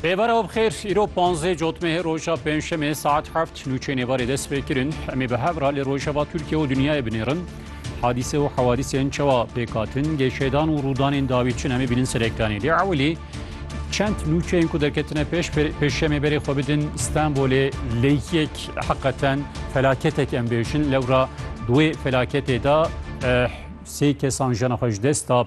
Bêvara û bixêr îro panzê cotmê roja pênçemê saet heft nûçê nêvarê dest pê kirin emê bi hevra lê rojava Tirkiye û dinyayê binêrin hadîse û hewadîsên çewa pêkatin gêşêdan û rûdanên dawî çin emê bînin serekdanê lê ewilî çend nûçeyên ku derketine pêş pêşemê berê xwe bidin Stenbolê lêyek heqeten felaketek em bêjin lewra duê felaketê da sê kesan jena xwe ji dest da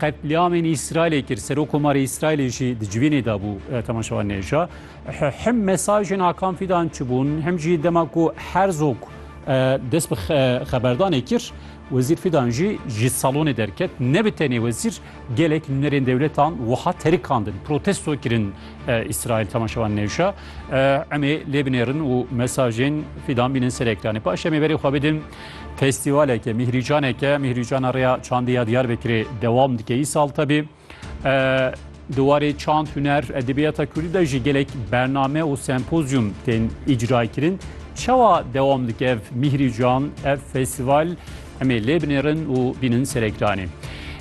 Qetlîamên Îsraîlê kir, Serokkomarê Îsraîlê jî di civînê de bû temaşewan nêja. Him mesajên Akan Fîdan çi bûn, him jî dema ku Herzog dest bi xeberdanê kir, Wezîr Fîdan jî ji salonê derket. Ne bi tenê wezîr, gelek nûnerên dewletan wiha terikandin, protesto kirin Îsraîl temaşewan nêja. Emê lê binêrin û mesajên Fîdan bînin ser ekranê. Paşê em ê berê xwe bidin Festîvaleke mîhrîcaneke mîhrîcana rêya çandê ya Diyarbekirê dewam dike î sal tebî. Di warê çand huner edebiyata Kurdî de jî gelek bername û sempozyum tên îcrayê kirin. Çawa dewam dike ev mîhrîcan, ev festîval em ê lê binêrin û bînin ser ekranê.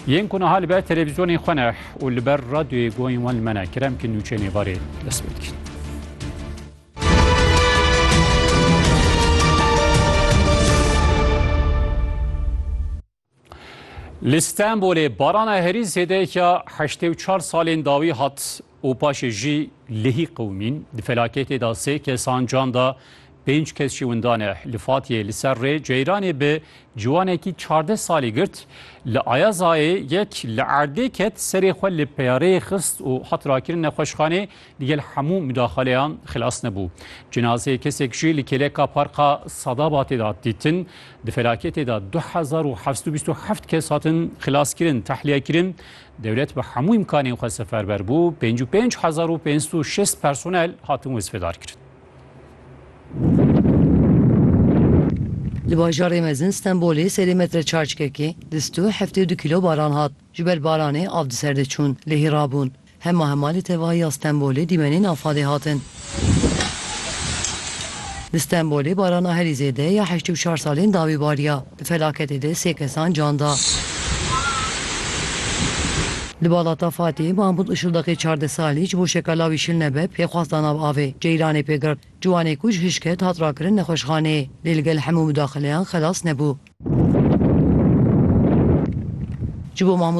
Yên ku niha li ber televîzyonên xwe ne û li ber radyoyê guhên wan li me ne kerem ki nûçeyên êvarê dest pê dikin. Li Stenbolê barana herî zêdeya heştê û çar salên dawî hat û paşê jî lihî qewimîn. Di felaketê de sê kesan can da, pênc kes jî winda ne. Li Fatiyê li ser rê ceyranê bi ciwanekî çardeh salî girt. Li Ayazayê yek li erdê ket, serê xwe li peyareyê xist û hat rakirin nexweşxanê, Digel hemû mudaxaleyan xilas nebû. Cinazeyê kesek jî li kêleka Parka Sadabatê de hat dîtin. Di felaketê de du hezar û heft û bîst û heft kes hatin xilaskirin, tehliyekirin. Dewlet bi hemû îmkanên xwe seferber bû. Pênc û pênc hezar û pênc sed û şêst personel hatin wezfedarkirin. Li bajarê mezin Stenbolê serê metre çarçkekê di stû heftê û du kîlo baran hat. Ji ber baranê av di ser de çûn, lehî rabûn. Hema hema li tevahiya Stenbolê dîmenên afadê hatin. Li Stenbolê barana herî zêde ya heşt û çar salên dawî bariya. Di felaketê de sê kesan can da. Li Balata Fatihê Mahmûd Işildaqê çardeh salî ji bo şeka lawî şil nebe pêxwas da nav avê. Ceyranê pê girt. Ciwanê ku ji hişk ket hat rakirin nexweşxaneyê. Lê li gel hemû midaxileyan xelas nebû. Ji bo Mahmûd